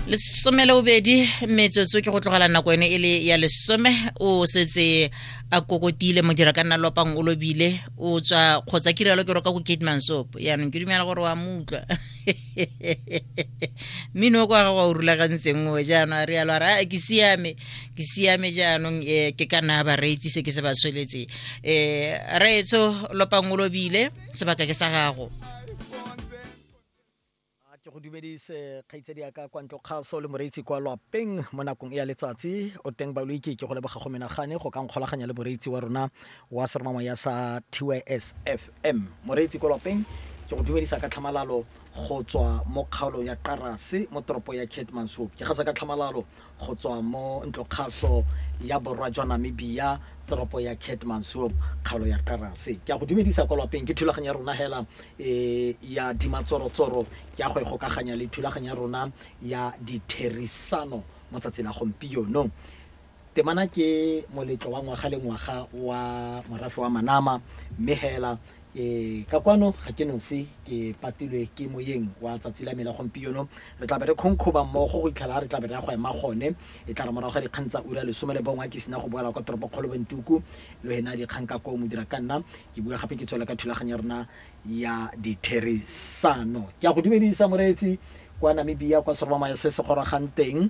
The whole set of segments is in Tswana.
lesome le bobedi metsotso ke go tlogela nako ene e le ya lesome o setse a kokotile modira ka nna lopang o lobile o tswa kgotsa ke rialo ke roka ko kate mansopo yaanong ke dumela gore wa mo utlwa mmino o kwa ga wa o rulagantseng o jaanong a rialo a re a ke siame ke siame jaanong um ke ka naya bareetsi se ke se ba tshweletse um reetso lopang o lobile sebaka ke sa gago A ke go dumedise kgaitsadi ya ka kwa ntlo kgaso le moreitsi kwa lwapeng mo nakong e ya letsatsi. O teng Baloiki ke go leboga go menagane go ka nkgolaganya le moreitsi wa rona wa seromamoya sa TYS FM. Moreitsi kwa lwapeng ke go dumedisa ka tlhamalalo go tswa mo kgaolong ya Qarase mo toropo ya Keetmanshoop. Ke gasa ka tlhamalalo Go tswa mo ntlokgaso ya borwa jwa Namibia, toropo ya Keetmanshoop, kgaolo ya Karase. Ke a go dumedisa kwa lwapeng. Ke thulaganyo ya rona hela e ya dimatsorotsoro ke a go e gokaganya le thulaganyo ya rona ya ditherisano mo tsatsi la gompieno. Temana ke moletlo wa ngwaga le ngwaga wa morafe wa Manama, mme hela Ee, ka kwano ga ke nosi, ke patilwe ke Moyeng wa tsatsi la me la gompieno. Re tlabe re khonkhoba mmogo go itlhela re tlabe re ya go ema gone. E tlare morago ga dikgang tsa ura ya lesome le bongwe ke sena go boela kwa toropokgolo Wentuku, lo he na dikgang ka koo modira ka nna. Ke bua gape ke tswele ka thulaganyo ya rona ya ditherisano. Ke a go dumedisa moreetsi kwa Namibia, kwa serobamaya se se gorogang teng.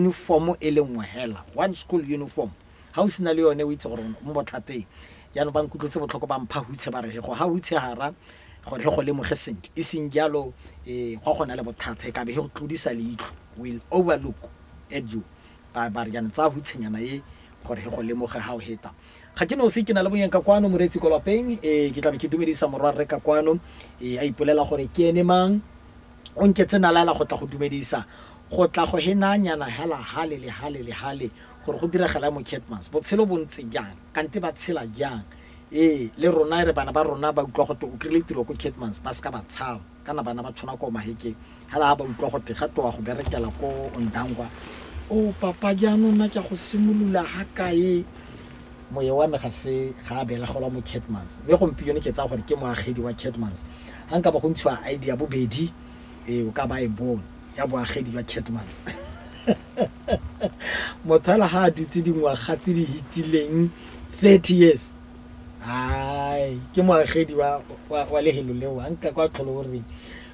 Uniform e le nngwe hela, one school uniform, ha o sena le yone o itse gore o mo bothateng. Jaanong ba nkutlwetse botlhoko ba mpha hutshe ba re he go ha hutshe hara gore he go lemoge sentle, e seng jalo gwa go na le bothata, e kabe he go tlodisa leitlho, will overlook at you, ba ba re jaanong tsaya hutshenyana e gore he go lemoge ha o heta. Ga ke nosi, ke na le monyeng ka kwano, Moreetsi kwa lapeng, ee, ke tlabe ke dumedisa morwarre ka kwano, ee, a ipolela gore ke ene mang. O nketse nalaela go tla go dumedisa, go tla go he naa nyana hela hale le hale le hale, gore go diragala mo Keetmans's. Botshelo bo ntse jang? Kante ba tshela jang? Ee, le rona e re bana ba rona ba utlwa go te o kry-ile tiro ko Keetmans's, ba seka ba tshaba, kana bana ba tshwana ko Mahekeng, hela ha ba utlwa go te ga te o ya go berekela ko Ondangwa, Oh, Papa, jaanong nna ke ya go simolola ha kae? Moye wa me ga se ga a belagelwa mo Keetmans's, mme gompieno ke tsaya gore ke moagedi wa Keetmans's. Ha nkabo go ntshiwa ID ya bobedi, ee, o ka ba e bong, ya boagedi jwa Kettman's. Motho hela ha a dutse dingwaga tse di hitileng thirty years, hai, ke moagedi wa, wa, wa lehelo leo. Ha nka kwa tlhole o re,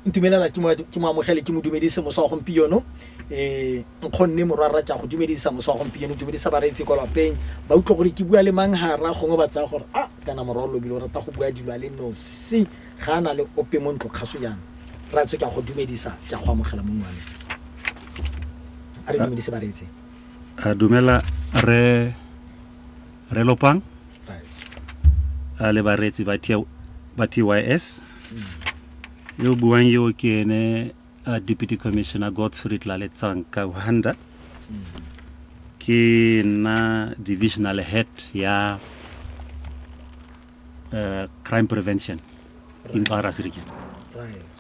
Ntumelela ke mo, ke mo amogele, ke mo dumedise mosa wa gompieno. Ee, nkgonne morwarra, ke a go dumedisa mosa wa gompieno, dumedisa bareetsi kwa lapeng. Ba utlwa gore ke bua le mang hara, gongwe ba tsaya gore a, kana morwa o lobile o rata go bua dilo a le nosi, ga a na le ope mo ntlo. Kgaso jaana, Rraetsho, ke a go dumedisa, ke a go amogela mo nngwaneng. A re dumedise bareetsi. A dumela Rre, Rre Lopang, Rraetsho. a le bareetsi ba T, ba TYS. Yo o buang yo ke ene uh, Deputy Commissioner Godfrey Tlaletsang Kauhanda ke nna divisional head ya uh, crime prevention right. in Xarasi region right.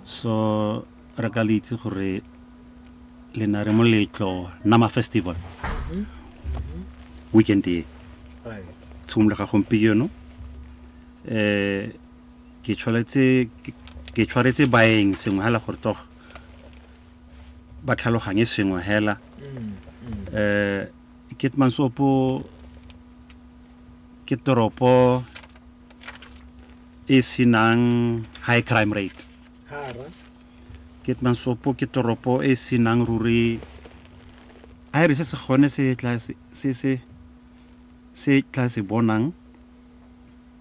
so re ka le itse gore le na re moletlo nama festival mm-hmm. mm-hmm. weekend e right. tshimologa gompieno um eh, ke tshwanetse ke tshwaretse baeng sengwe hela gore tog ba tlhaloganye sengwe hela mm, mm. eh ke mansopo ke toropo e senang high crime rate hara ke mansopo ke toropo e senang ruri a re se se gone se tla se se se tla se bonang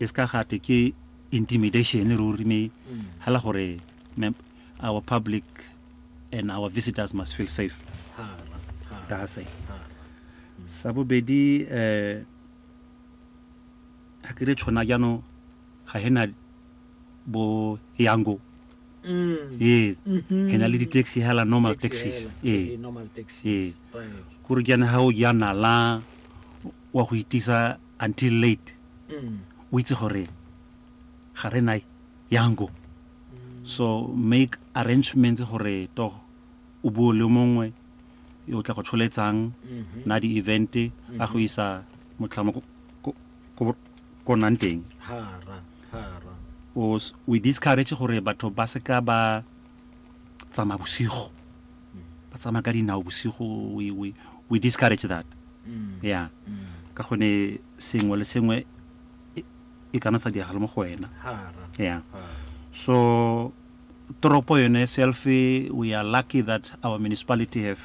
E se ka ga twe ke intimidation ruri me hela gore our public and our visitors must feel safe ka ga se. Sa bobedi um ha ke re tšhona jano ga he na bo yango ee he na le di-taxi hela normal taxis ee ee kore jane ha o ja nala wa go itisa until late o itse gore ga re na yango so make arrangements gore to o buo le mongwe o tla go tsholetsang na di-event a go isa motlhamo ko- ko- ko ko nnang teng hara hara o s- we discourage gore batho ba seka ba tsamaya bosigo ba tsamaya ka dinao bosigo we, we, we discourage that mm. yeah mm. ka gone sengwe le sengwe e, e kana sa diagala mo go wena yeah so toropo yone self we are lucky that our municipality have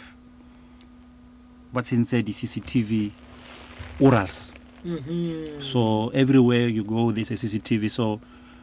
ba tsentse di-cctv orals mm -hmm. so everywhere you go there's a cctv so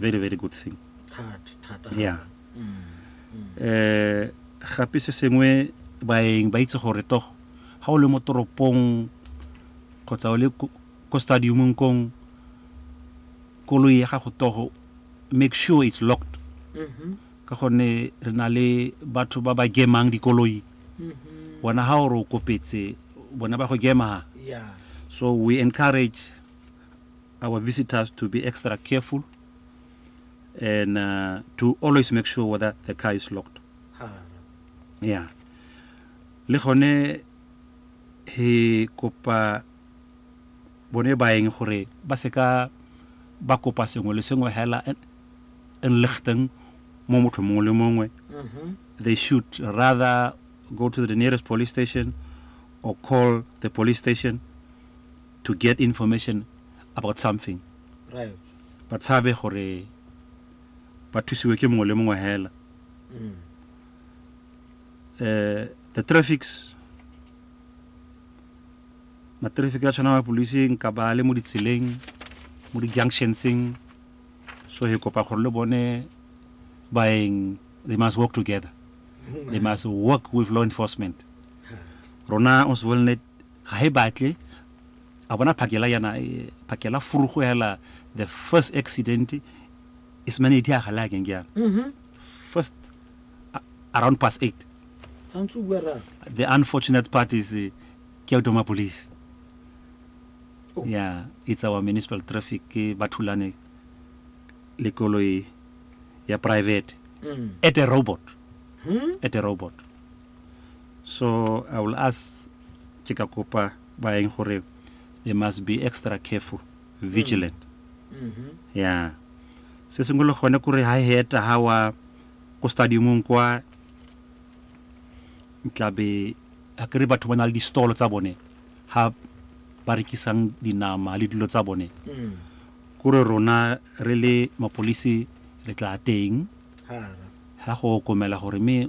very very good thing yeah mm, mm. eh gape se sengwe baeng ba itse gore to ga o le mo toropong kgotsa o le ko stadiumong kong koloi ya gago togo make sure it's locked mm-hmm. ka gonne re na le batho ba ba gemang dikoloi mm-hmm. bona ga gore o kopetse bona ba go gema so we encourage our visitors to be extra careful and uh, to always make sure whether the car is locked. Yeah. Le gone he kopa bone baeng gore ba seka ba kopa sengwe le sengwe hela enlichten mo motho mongwe le mongwe. Mm-hmm. They should rather go to the nearest police station or call the police station to get information about something ba tshabe gore ba thusiwe ke mongwe le mongwe hela mm. eh, the traffics matraffic a tshwana mapolising ka ba le mo ditseleng mo di-junctionseng so he kopa gore le bone baeng they must work together they must work with law enforcement rona o se volnet Ga e batle, a bona phakela yana, phakela furugo hela, the first accident, e se mane e diaga le akeng ke yana. First, around past eight. The unfortunate part is, ke ya Doma Police. Oh. Yeah, it's our municipal traffic, ke ba thulane le koloi ya private. Mm. At a robot. Hmm? At a robot. So I will ask ke ka kopa baeng gore they must be extra careful, vigilant. Ya. Se sengwe le gone kore ha he eta ha wa ko stadiumong kwa tlabe a kere batho ba na le di-stall tsa bone ha ba rekisang dinama le dilo tsa bone kore rona re le mapolisi re tla teng ha go okomela gore me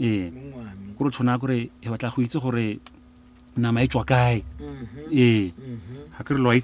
Ee, kore o tshwana kore re batla go itse gore nama e tswa kae. Ee, ga ke re lo a itse.